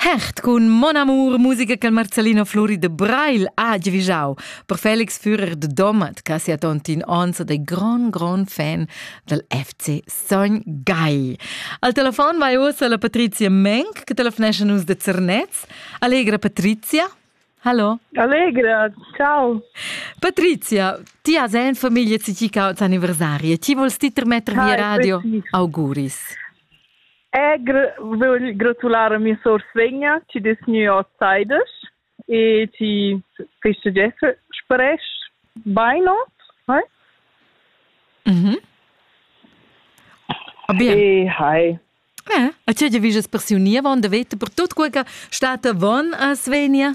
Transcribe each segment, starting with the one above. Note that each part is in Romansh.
Hert cun Mon Amour, musica che il Marcellino Flori de Brail ha givisau per Felix Führer de Domat, che sia tontin onza dei gran gran fan del FC Sogn Gai. Al telefon vai ussa la Patrizia Menk, che telefonesce nus de Zernez. Allegra Patrizia. Hallo. Allegra, ciao. Patrizia, ti has en famiglia ci ci causa anniversarie. Ti volst ti termetter via radio? Auguris. Egr vögl gratular a mia sour Svenja chi dess gnü hoz saidas e chi festegessa spresch bainot. Hai? Mhm. Ah, bien. E hai. Eh, a tge giavisches per siu nievon da veta per tut quei che stat avon a Svenia?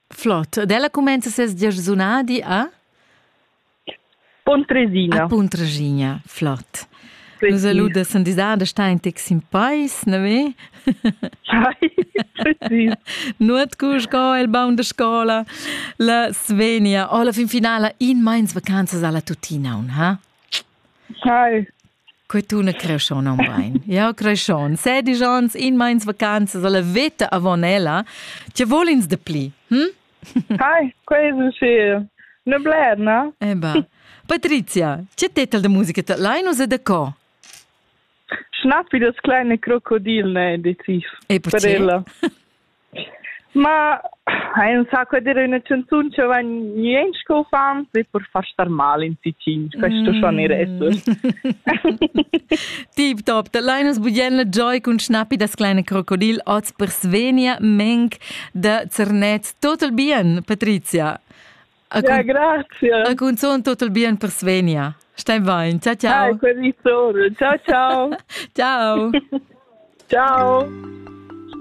Flot. Ed ella cumenza ses giarsunadi a? Puntresina. A Puntresina, flot. Nus saluda sandisada da star in tec sin pais, ne ve? Sai, precis. Nuot cu sco il baun de scola, la Svenia, o la fin finala in meins vacanzas alla tutina, un, ha? Sai, Que tuna creschon aunc bein. Ja, creschon. Sedisch ons in meins vacanzas alla veta avon ella. Ti volins de pli, hm? Hai, quasi sì. Ne bler, na? Eh ba. Patrizia, che tetel de musica te Linus e de co? Schnapp wie das kleine Krokodil, ne, deziv. E per ella. Ma hai insaco dir üna chanzun cha vain niench co uffants e per far star mal in Ticin. Questo schon ir esser. Tip top, da lainas bugen la joy cun schnappi das kleine krokodil oz per Svenia Menk da Zernez. Total bien, Patrizia. Ja, grazie. A cunzon total bien per Svenia. Stai bain. Ciao ciao. Ai, quel ciao. Ciao ciao. ciao. ciao.